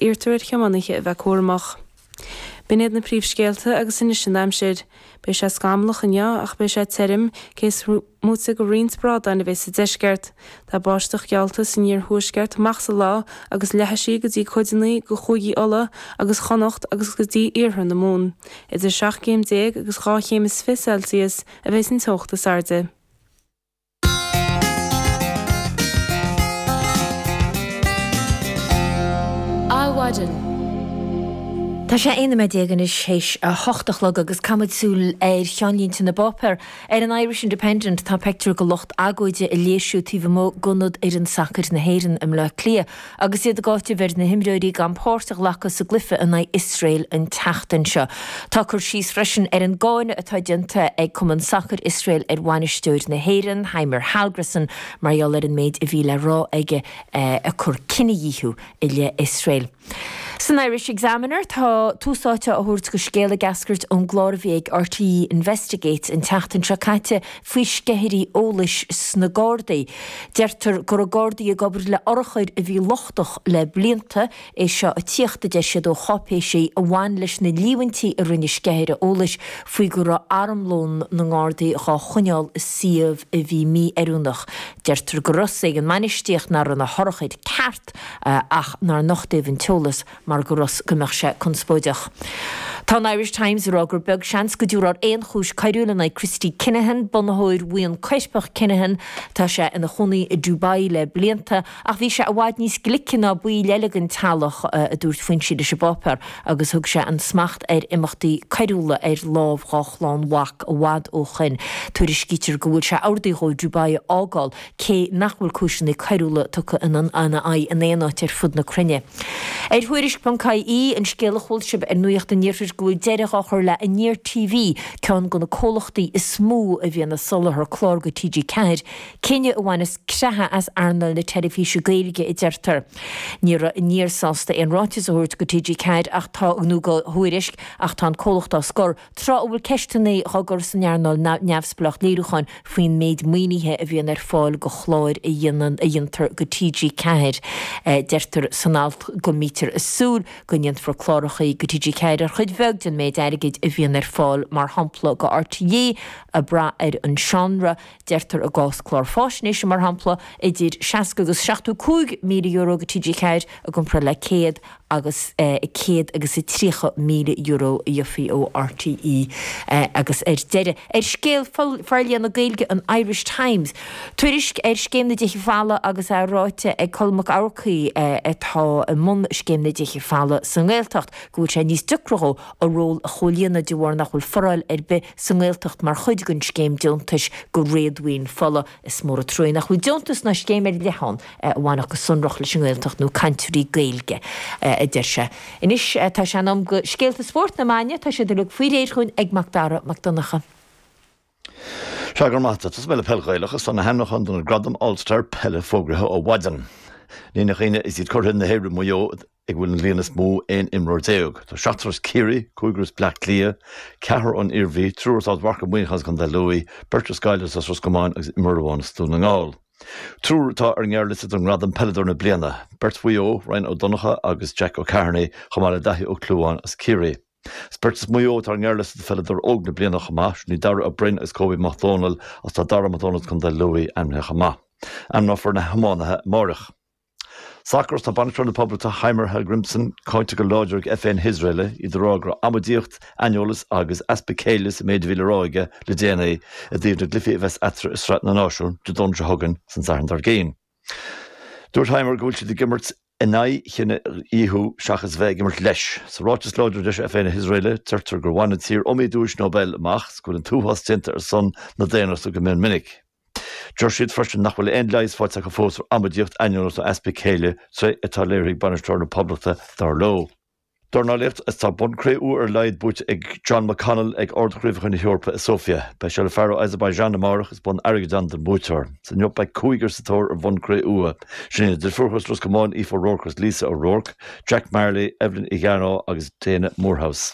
Iarrtar ar thiománaithe a bheith cúramach. B'in iad na príomhscéalta agus anois an aimsir. Beidh sé scamallach inniu ach beidh sé tirim, cé is moite de roinnt brádáin a bheidh sa deisceart. Tá báisteach geallta san iarthuaisceart amach sa lá agus leathfaidh sí go dtí cuideanna de chúigí Uladh agus Chonnacht agus go dtí iarthar na Mumhan. Idir seacht gcéim déag agus dhá chéim is fiche Celsius a bheidh an teocht is airde. Adhmhaidin. Tá sé aon nóiméad déag anois théis a hocht a chlog agus caithfidh muid súil ar cheannlínte na bpáipéar. Ar an Irish Independent tá peictiúr de lucht agóide ag léirsiú taobh amuigh d'ionad fhoireann sacair na hÉireann i mBleá Cliath. Agus iad ag áiteamh ar na himreoirí gan páirt a ghlacadh sa gcluiche in aghaidh Iosrael an tseachtain seo, tá cur síos freisin ar an gcáineadh atá déanta ag Cumann Sacair Iosrael ar bhainisteoir na hÉireann, Heimir Hallgrímsson, mar gheall ar an méid a bhí le rá aige ag cur cinedhíothú i leith Iosrael. San Irish Examiner, tá tús áite á thabhairt do scéal ag eascairt ón gclár a bhí ag RTÉ Investigates an tseachtain seo caite faoi sceithirí eolais sna Gardaí. Deirtear go raibh Gardaí ag obair le urchair a bhí lochtach le blianta, é seo a tíocht, a deir siad, ó cháipéisí a bhain leis na líomhaintí a rinne sceithire eolais faoi go raibh armlón na nGardaí dhá choinneáil i suíomh a bhí mí-oiriúnach. Deirtear go raibh a fhios ag an mbainistíocht nach raibh na hurchair ceart ach nár nochtaíodh an t-eolas. mar go raibh a fhios go mbeadh sé conspóideach. Tá an Irish Times ag rá gur beag seans go dtabharfar aon chúis choiriúil in aghaidh Christy Kinahan, bunaitheoir bhuíon choirpeach Kinahan. Tá sé ina chónaí i Dubai le blianta ach bhí sé i bhfad níos glice ná baill eile den teaghlach, a dúirt foinsí leis an bpáipéar, agus thug sé an smacht ar imeachtaí coiriúla ar lámh dá chlann mhac i bhfad ó shoin. Tuairiscítear go bhfuil sé an-ard aird dhó Dubai a fhágáil cé nach bhfuil cúiseanna coiriúla tugtha ina, ina aghaidh in aon áit ar fud na cruinne. Ar thuairisc.ie, an scéal a chuala sibh ar Nuacht an Iarthair go bhfuil deireadh á chur le Aniar TV, ceann de na comhlachtaí is mó a bhí ag soláthar clár go TG4, cinneadh a bhaineas creathadh as earnáil na teilifíse Gaeilge a deirtear. Ní raibh Aniar sásta aon ráiteas a thabhairt go TG4 ach tá, nó go Tuairisc, ach tá an comhlacht á scor. tráth a bhfuil ceisteanna á gcur san earnáil neamhspleách léiriúcháin faoin méid maoinithe a bhíonn ar fáil do chláir a dhéantar do TG4. Deirtear san alt go mbítear ag súil go ndéanfar clárachaí do TG4 ar chuid bheag den mhéid airgid a bhíonn ar fáil, mar shampla do RTÉ, ag brath ar an seánra. Deirtear i gcás clár faisnéise, mar shampla, idir 60 agus 75 míle euro go TG4 i gcomparáid le 100 agus 100 agus a 30 míle euro a gheofaí ó RTÉ. Agus ar deireadh, ar scéal forlíonadh Gaeilge an Irish Times, tuairisc ar Scéim na dTithe Folmha agus é ráite ag Colm Mac Eachmharcaigh, atá i mbun Scéim na dTithe Folmha sa nGaeltacht, go bhfuil sé níos deocra dhó a ról a chomhlíonadh de bharr nach bhfuil foráil ar bith sa nGaeltacht mar chuid den scéim deontais go réadmhaoin folamh. Is mór an truaigh nach bhfuil deontas ná scéim ar leith ann a bhainfeadh go sonrach leis an nGaeltacht nó cainteoirí Gaeilge, a deir sé. Anois tá sé in am go scéalta spóirt na maidne, tá siad uilig faoi réir chugainn ag Mac Dara Mac Donncha. Sea, go raibh maith a't. Tosóidh mé le Peil Ghaelach is tá na hainmneacha do na Gradaim All-Star Peile fógraithe ó mhaidean. Ní nach ionadh is iad curaidh na hÉireann, Maigh Eo, ag a bhfuil an líon is mó aon imreoir déag. Tá seachtar as Ciarraí, cúigear as Bleá Cliath, ceathrar ón Iarmhí, triúr as Ard Mhacha Muineachán is Contae Lú, beirt as Gaillimh, is as Ros Comáin agus imreoir amháin as Dún na nGall. Triúr atá ar an ngearrliosta don ngradam Peileadóir na Bliana, beirt Mhaigh Eo, Ryan Ó Donnchadha agus Jack Ó Ceithearnaigh, chomh maith le Daithí Ó Clúmháin as Ciarraí. Is beirt as Maigh Eo atá ar an ngearrliosta do Pheileadóir Óg na Bliana chomh maith, sin iad Daire Ó Broin agus Kobe Mac Dhomhnaill is tá Dara Mac Dhomhnaill as Contae Lú ainmnithe chomh maith. Ainmneofar na hiománaithe amáireach. Sacar is tá bainisteoir na Poblachta Heimir Hallgrimsson cáinte go láidir ag FA na hIosraele iad ag rá go raibh amaidíocht, aineolas agus easpa céille sa méid a bhí le rá aige le déanaí i dtaobh na gcluichí a bheas eatarthu i Sraith na Náisiún Dé Domhnaigh seo chugainn is an Satharn dár gcionn. Dúirt Heimir go bhfuil siad ag imirt in aghaidh chinedhíothú seachas a bheith ag imirt leis. Sa ráiteas láidir a d'eisigh FA na hIosraele, deirtear gur bhain an tír iomaí duais Nobel amach agus go bhfuil an t-uafás déanta ar son na daonnachta go mion minic. Deir siad freisin nach bhfuil aon leigheas faighte acu fós ar amaidíocht aineolas ná easpa céille, tréithe atá léirithe ag bainisteoir na Poblachta, dar leo. Dornálaíocht is tá bonn cré-umha ar a laghad buaite ag John McConnell ag Ard-Chraobhacha na hEorpa i Sóifia. Beidh sé le fear ó Azerbaijan amárach is bonn airgid ann don bhuaiteoir. Is inniu beidh cúigear sa tóir ar bhonn cré-umha. Sin iad na deirfiúracha as Ros Comáin, Aoife O'Rourke agus Lisa O'Rourke, Jack Marley, Evelyn Igharo agus Daina Moorhouse.